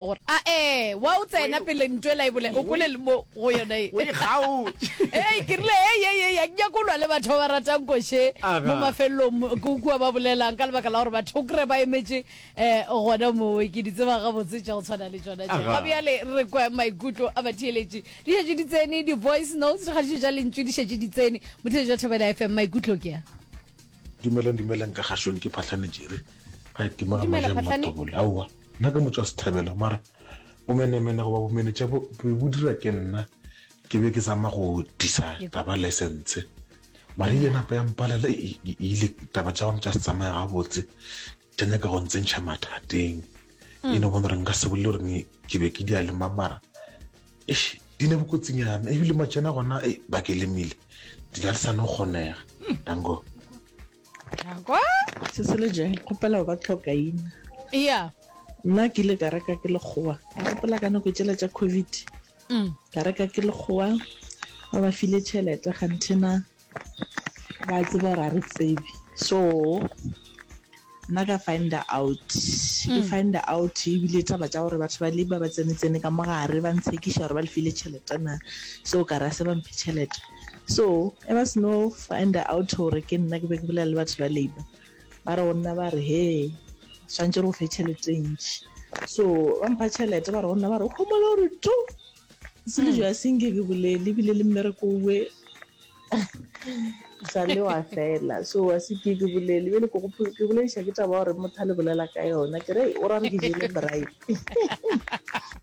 gore a e wa o tsena pele ntwe la e bole o kole le mo go yona e o e kgaotše e ke rile e ye ye ya nya kolwa le batho ba ratang koshe mo mafelong go kua ba bolelang ka lebaka la gore batho kre ba emetše eh gona mo ke di tseba ga botse tša go tshwana le tsona tša ga bjale re kwa maikutlo a batheeletše di šetše di tsene di voice notes ga dijo ja lentšu di šetše di tsene motheeletše jwa thobela fm maikutlo ke ya dumelang dumelang ka gašong ke phatlhanetše re ga e timela maja mmatobole aowa Nna ke motšwa Sethabelo mara bomenemene goba bomenetša bo be bo dira ke nna. Ke be ke zama go disa taba license mara ile napa ya mpalela e ile taba tša gona tša se tsamaya gabotse tša nyaka go ntsentšha mathateng. E no bona gore nka se bolele gore ke be ke di a lema mara eish di le bokotsinyana ebile matšana gona ba ke lemile di ka le sa no kgonega. Danko. Kwa? Sese le Jane, kgopela go ba tlhokaina. Eya. Nna ke ile ka reka ke lekgowa. Ke kgopela ka nako tšela tša COVID. Mm. Ka reka ke lekgowa. Ba ba file tšhelete gantena ba tseba gore a re tsebe. So nna ka find out. Ke mm. find out ebile taba tša gore batho ba le ba ba tsene tsene ka mogare ba ntshekiša gore ba le file tšhelete na. So ka ra se ba mphe tšhelete. So ge ba seno finder out gore ke nna ke be ke bolela le batho ba labour ba re go nna ba re he swantse re go fe tšhelete e ntši so ba mpha tšhelete ba re go nna ba re o kgomole gore to se le jo a senke ke bolele ebile le mmereko uwe sa le wa fela so a se ke ke bolele bjele ke gopo ke bolediša ke taba gore motho a le bolela ka yona ke re o ra re ke jele brae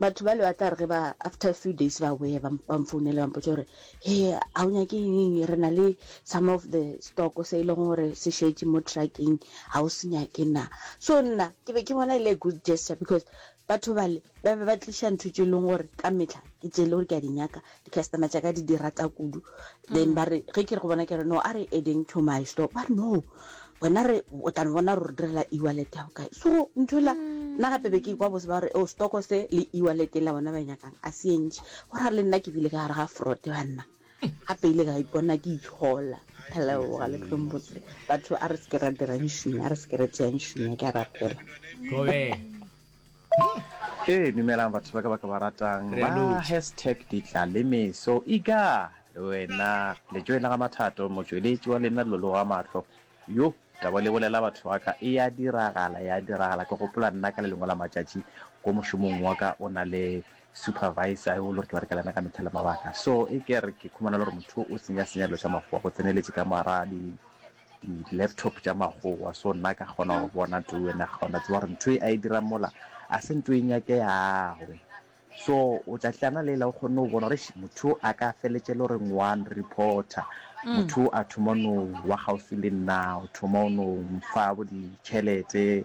batho ba le ba tla re ge ba after a few days ba boya ba ba mfounele ba mpotsa gore he ga o nyake eng re na le some of the stock se e leng gore se šetse mo trucking ga o se nyake na so nna ke be ke bona e le a good gesture because batho bale ba be ba tliša ntho tse e leng gore ka metlha ke tse e le gore ke a di nyaka Di-customer tša ka di di rata kudu. Then ba re, ge ke re go bona, ke re, no, a re adding to my store. Ba re, no, wena re, o tla no bona gore re direla e-wallet ya go kae. So ntho ela, nna gape be ke ikwa bose ba gore, oh, stock se le e-wallet ela bona ba e nyakang a se e ntši. Go ra le nna ke bile ka gare ga fraud banna. Gape ile ka ipona ke itshola. Ke a leboga le tlo mbotse. Batho a re se ke ra dirang šume, a re se ke ra tšeang šume, ke a rapela. Thobela. Ee, dumelang batho ba ka ba ka ba ratang ba hashtag ditla le meso e ka le wena letšoe la ga mathato motšweletši wa lena lolo wa mahlo yo taba le bolela batho ba ka e ya diragala ya diragala ke gopola nna ka le lengwe la matšatši ko mošomong wa ka o na le supervisor yo le gore ke ba re ka lena ka methale mabaka so e ke re ke khumana le gore motho o senya senya lo sa makgowa go tseneletše ka mara di di-laptop tša makgowa so nna ka kgona go bona too ene ga ona tseba gore ntho e a e dirang mola a se ntho e nyake yagwe so o tla tlana lela o kgonne go bona gore motho a ka feletse le gore ngwane reporter mm. motho a thoma no wa gaufi le nna o thoma o no mfa bo ditšhelete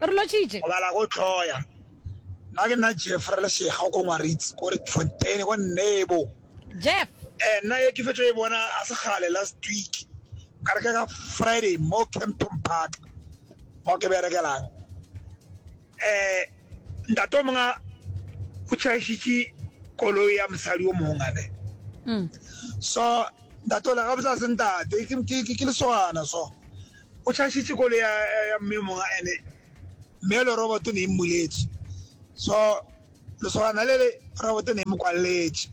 Re lotšitše. Go bala go tloya. Nna ke nna Jeff re le Shega ko Ngwaritse ko Rietfontein ko Nebo. Jeff. Eh nna ye ke fetšo e bona a se gale last week ka re ke ka Friday mo Kempton Park mo ke berekelang. Eh ntate o mongwe o tšhaešitše koloi ya mosadi o mongwe ne. So ntate o le gabotse a se ntate ke lesogana so. O tlhagišitše koloi ya ya mme yo mongwe ene mme yole roboto ne e mmuletše so lesogana le le roboto ne e mo kwalletše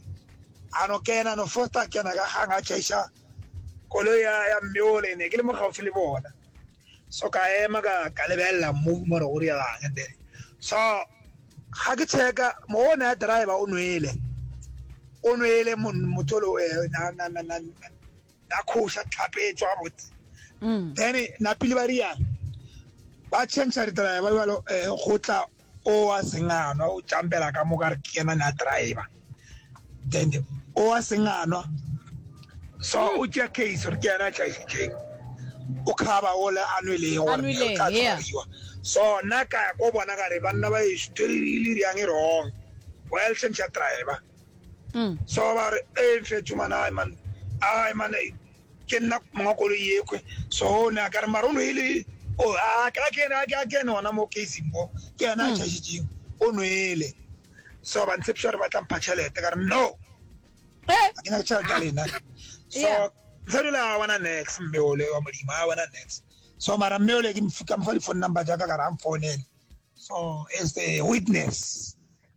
a no kena no fosta a kena ka gang a tlhagiša koloi ya ya mme ole ne ke le mo gaufi le bona so ka ema ka ka lebelela mmu more go dirang and then so ga ke checka mo o ne a driver o nwele o nwele motho lo eh, na na na na na khoša tlhape e tswa botse mm. then na pele ba riana ba change ditraya ba bjalo um eh, go tla o a senganwa o tšampela ka moka re ke yena ne a driver then o a senganwa so mm. o tšea case re ke yena a tlaisitseng o khaba ole a nweleng gore o tla tshwariwa so nna ka ya ko bona ka re banna ba eso tse di le riang e wrong well change ya driver so ba re e fe tšhumana ai man ai man ke nna monga koloi yekhwe so ne a ka re mara o nwele o oh, a ka kene a ka kene ona mo casing mo ke yena a hmm. chashitseng o nwele so ba ntshepisa gore ba tla mpha tšhelete ka re no eh. a ke nyaka tšhelete ya lena so ntshadula a bona nex mme ole wa modimo a bona nex so mara mme ole ke mfuka mfa di-phone number jaaka ka re a mfounele so as a witness